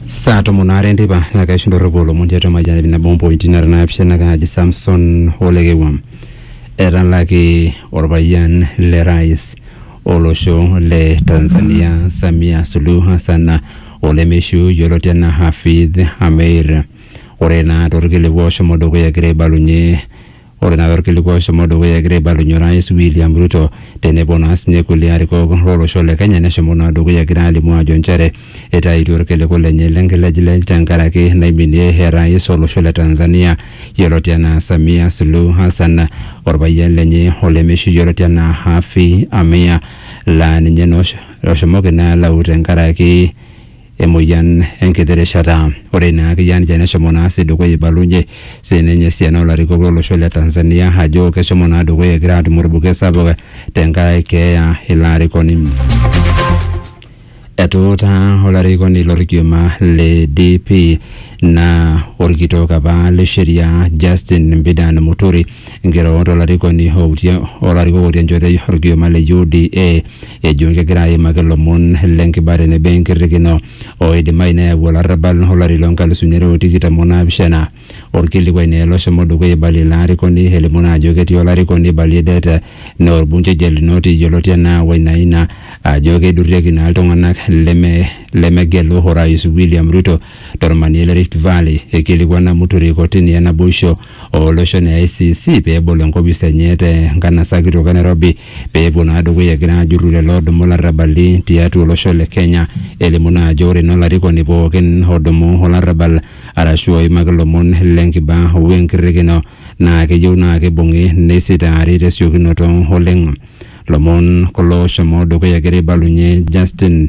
saa tomon aare enteipa naa kaisho ndorropu olomon tiatua mayian ip nabo ompointi nara naapishana kaaji samson olekewam etalaki orpayian le rais olosho le tanzania samia suluhu hassan olemeishiu yioloti anaa hafidh ameir ore naa torkiliku oshomo dukuya egira aibalunye Ore naa torkiliku oshomo dukuya egira aibalunye orais William Ruto tenebo naa sinye kulie arikok lolosho le Kenya neshomo naa dukuya egira alimu ajo nchere itaituo irkiliku lenye lenkilejilej tenkaraki naiminie orais olosho le Tanzania yioloti enaa Samia Suluhu Hassan orpayian lenye olemeishu yioloti enaa Haffy Amia laa ninye naa oshomoki naa alau tenkaraki emoyian enkiti rishata. Ore ina akeyie ninche neshomo naa sii dukuya eibalunyie sii ninye esiana oo larikok lo losho le Tanzania ajo keshomo naa dukuya egira aatum olbuket sapuk tenkaraki keeya ilo arikoni. Etuutaa olarikoni lo lkioma le DP naa olkitok apa le sheria Justin Mbidan Muturi nkirorot o larikoni outie o larikok otii enchoto o lkioma le UDA ejo kegira aimaki lomon le nkiba tenebo enkirrikino oidimayu neyau olarrabal olari loo nkalusuni are o tikitam o naapishana. Olkilikuai naa ilo oshomo dukuya eibalie ilo arikoni elimu naa ajo ketii olarikoni eibalie det naa olbungei Gelunoti yioloti anaa Wainaina ajo keidurrieki naa iltung'anak leme lemegelu Orais William Ruto to lmanie le Rift Valley. Eikilikuana Muturi kotini e naboisho ooloshon e ICC pee ebol enkopis enye te nkanasa kitok e Nairobi pee epuo naa dukuya egira aajurru lelo oodumu larrabali tiatua olosho le Kenya. Elimu naa ajo ore naa olarikoni pookin odumu olarrabal arashu oimaki ilomon le nkiba o enkirrikino naa keyieu naa kibung'i neisitaari te siokinoto oleng. Lomon kulo oshomo dukuya egira aibalunye Justin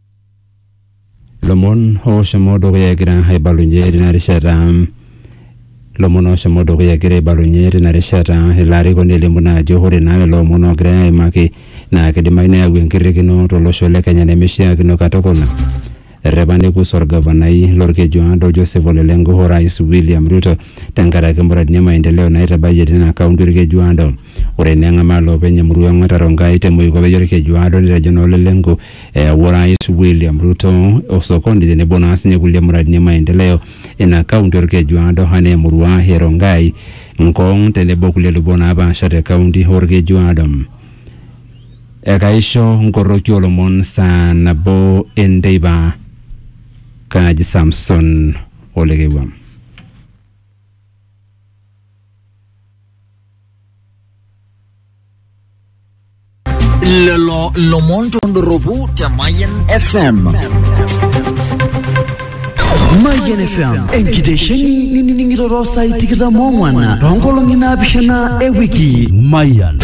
lomon oshomo dukuya egira aibalunye tina rishata lomon oshomo dukuya egira aibalunye tina rishata ilo arikoni elimu naa ajo ore naa lelo omon oogirai aimaki naa kidimayu neyau enkirrikino tolosho le kenya nemishiakino katukul errepa nekus orgavanai lorkeju aado Joseph ole lenku orais William Ruto tenkaraki muradini e maendeleo naitabayie tina kaunti orkeju aado ore naa eng'amaa loopeny emurua ong'ata Rongai te moikope orkeju aado netejo naa ole lenku Eyawua Orais William Ruto osokoni tenebo naa sinye kulie muradini e maendeleo ina kaunti Olkeju Aado anaa emurua e Rongai, Ngong tenebo kulie lubot naapaasha te kaunti Olkeju Aado. Ekaisho nkoroki oolomon saa nabo enteipa. Kaaji Samson Olekewua. lelo lomon tondoropu te Mayan FM. Mayian FM enkitesheni ninining'ito saai tikitam ong'wan toonkolong'i naapishana e wiki. Mayian.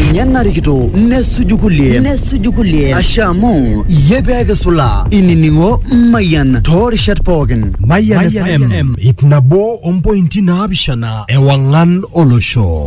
Ninye narikito nesuju kulie nesuju kulie ashe amu iyie pee kisula inining'o Mayian toorishat pookin. Mayian FM ip nabo ompointi naapishana ewang'an olosho.